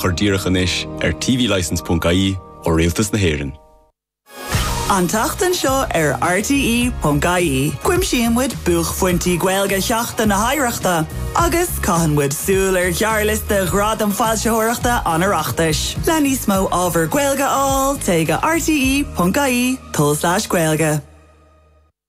chur díreach anois ar tvlicense ponc ie ó Rialtas na hÉireann. An tseachtain seo ar RTÉ ponc ie, cuimsíonn muid buaicphointí Gaeilge Sheachtain na hOidhreachta agus caitheann muid súil ar ghearrliosta Ghradaim Foilsitheoireachta an Oireachtais. Le níos mó ábhar Gaeilge a fháil téigh go rte ponc ie, tulslais gaeilge.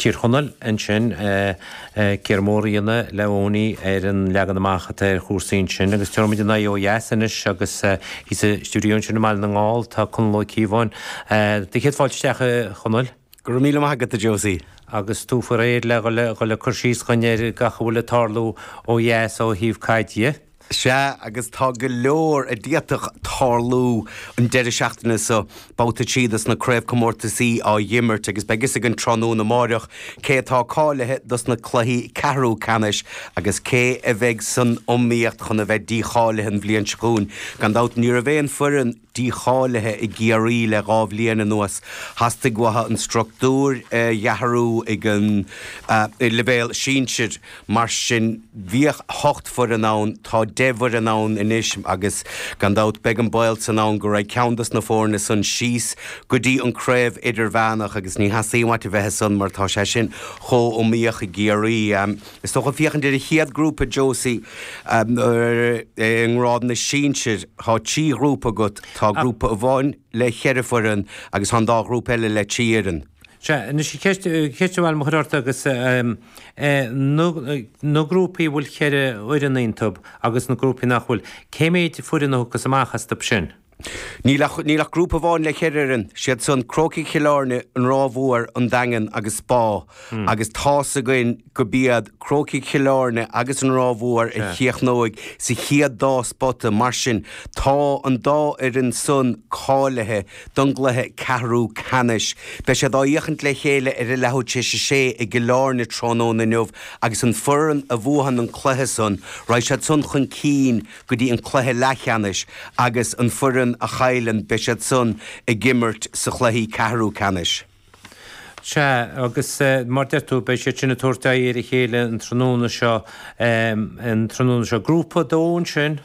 Tír Chonaill ansin, céard a mheabhraíonn Leonie, ar an leagan amach atá ar chúrsaí ansin agus tabharfaidh muid ár n-aghaidh ó dheas anois agus sa stiúideo ansin i mBaile na nGall, tá Conall Ó Cíobháin. Tá céad fáilte isteach, a Chonaill. Go raibh míle maith agat, a Josie. Agus tú faoi réir le dhul le cur síos dhuinn ar gach a bhfuil le tarlú ó dheas ó thaobh caide? Sea, agus tá go leor a d'fhéadfadh tarlú an deireadh seachtaine seo. Babhta a trí dos na craobhcomórtasaí á dh'imirt agus beidh fhios againn tráthnóna amáireach cé atá cáilithe dos na cluichí ceathrú ceannais agus cé a bheidh san iomaíocht chun a bheith dícháilithe an bhliain seo chugainn. Gan dabht ní raibh aon foireann dícháilithe i gCiarraí le dhá bhliain anuas. Theastaigh uathu an struchtúr a dh'athrú ag an leibhéal sinsear. Mar sin, bhíodh hocht bhfoireann ann, tá deich bhfoireann ann anois agus, gan dabht, beidh an baol san ann go raghadh ceann dos na foirne san síos go dtí an craobh idirmheánach agus ní theastaíonn uait a bheith ansan mar tá sé sin chomh iomaíoch i gCiarraí. Is dócha féachaint ar an chéad grúpa, Josie, ar an ngrád na sinsear, tá trí ghrúpa agat, tá grúpa amháin le cheithre foireann agus tá an dá ghrúpa eile le trí fhoireann. Sea, anois ceist, ceist amháin le cur ort agus na, na grúpaí a bhfuil cheithre fhoireann iontub agus na grúpaí nach bhfuil, cé mhéad foireann a thiocfas amach astub sin? Níl ach níl ach grúpa amháin le cheithre fhoireann, is iad san, Crócaigh Chill Airne, An Ráth Mhór, An Daingean agus Spá, agus tá fhios againn go b'iad Crócaigh Chill Airne agus An Ráth Mhór a chríochnóidh sa chéad dá spota, mar sin tá an dá fhoireann san cáilithe don gcluiche ceathrú ceannais. Beidh siad á féachaint le chéile ar a leathuair tar éis a sé i gCill Airne tráthnóna inniu agus an foireann a bhuaitheann an cluiche san, raghaidh siad san chun cinn. go dtí an cluiche leathcheannais agus an foireann a chailleann beidh siad san ag imirt sa chluiche ceathrú ceannais. Sea, agus mar deir tú, beidh siad sin ag tabhairt aghaidh ar a chéile an tráthnóna seo, an tráthnóna seo. Grúpa a dó ansin?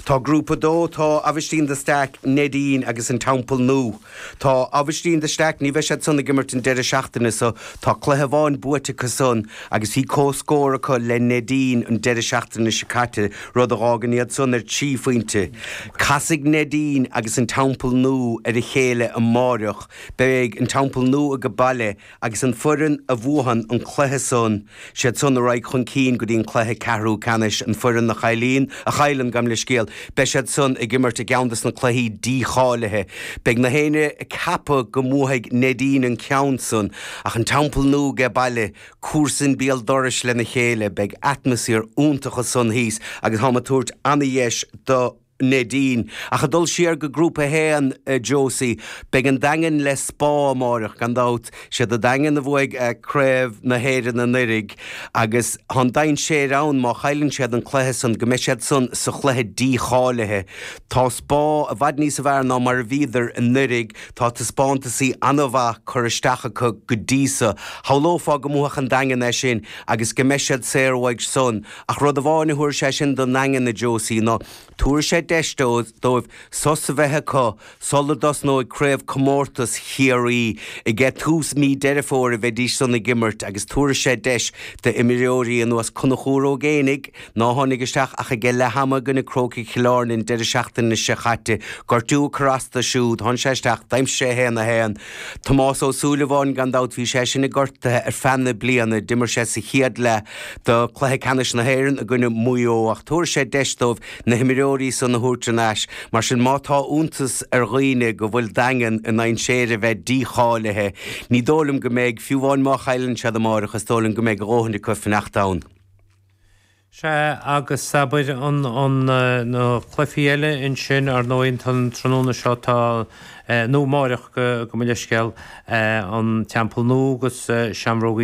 Tá Grúpa a dó, tá Aibhistín de Staic, Neidín agus an Teampall Nua. Tá Aibhistín de Staic, ní bheidh siad san ag imirt an deireadh seachtaine so. Tá cluiche amháin buaite acu san agus bhí comhscór acu le Neidín an deireadh seachtaine seo caite, rud a dh'fhágann iad san ar trí phointe. Casfaidh Neidín agus an Teampall Nua ar a chéile amáireach. Beidh an Teampall Nua ag an baile. Agus an foireann a bhuadhann an cluiche san, siad san a raghaidh chun cinn go dtí an cluiche ceathrú ceannais. An foireann a chailleann, a chailleann, gabh mo leithscéal, beidh siad san ag imirt i gceann des na cluichí dí-cháilithe. Beidh gach éinne ag ceapadh go mbuadhfaidh Neidín an ceann san, ach an Teampall Nua aige baile, comharsain béal dorais lena chéile. Beidh atmaisféar iontach ansan thíos agus táim ag tabhairt ana-dheis do. Neidín. Ach ag dul siar go Grúpa 1, a Josie, beidh an Daingean le Spa amáireach, gan dabht. Siad an Daingean a bhuaigh Craobh na hÉireann anuiridh agus tá an dainséir ann má chailleann siad an cluiche san go mbeidh siad san sa chluiche dí-cháilithe. Tá Spa i bhfad níos fearr ná mar a bhíodar anuiridh. Tá taispeántasaí ana-mhaith curtha isteach acu go dtí so. Shamhlófá go mbuafadh an Daingean é sin agus go mbeidh siad saor uaidh san. Ach rud amháin a thabharfaidh sé sin don nDaingean, a Josie, ná tabharfaidh sé deis dóibh sos a bheith acu sula dtosnóidh craobhchomórtas Chiarraí. Ag tús mí Deireadh Fómhair a bheidís san ag imirt agus tabharfaidh sé deis d'imreoirí ar nós Conchúr Ó Géibheannaigh, ná tháinig isteach ach ag leath ama i gcoinne Crócaigh Chill Airne an deireadh seachtaine seo caite, gortú a cur astu siúd. Tháinig sé isteach, d'aimsigh sé 1-1. Tom Ó Súilleabháin, gan dabht bhí seisean gortaithe ar feadh na bliana, d'imir sé sa chéad leath do Cluiche Ceannais na hÉireann i gcoinne Mhaigh Eo ach tabharfaidh sé deis dóibh na himreoirí san a thabhairt ar ais, mar sin má tá iontas ar dhaoine go bhfuil an Daingean i ndainséir a bheith dícháilithe, ní dóigh liom go mbeidh, fiú amháin má chailleann siad amárach, is dóigh liom go mbeidh a ndóthain acu fanacht ann. Sea, agus abair, an, an, na cluifí eile ansin, ar ndóigh, an tráthnóna seo tá, eh, nó amáireach, gabh, gabh mo leithscéal, eh, an Teampall Nua agus, eh, Seamróg Uí.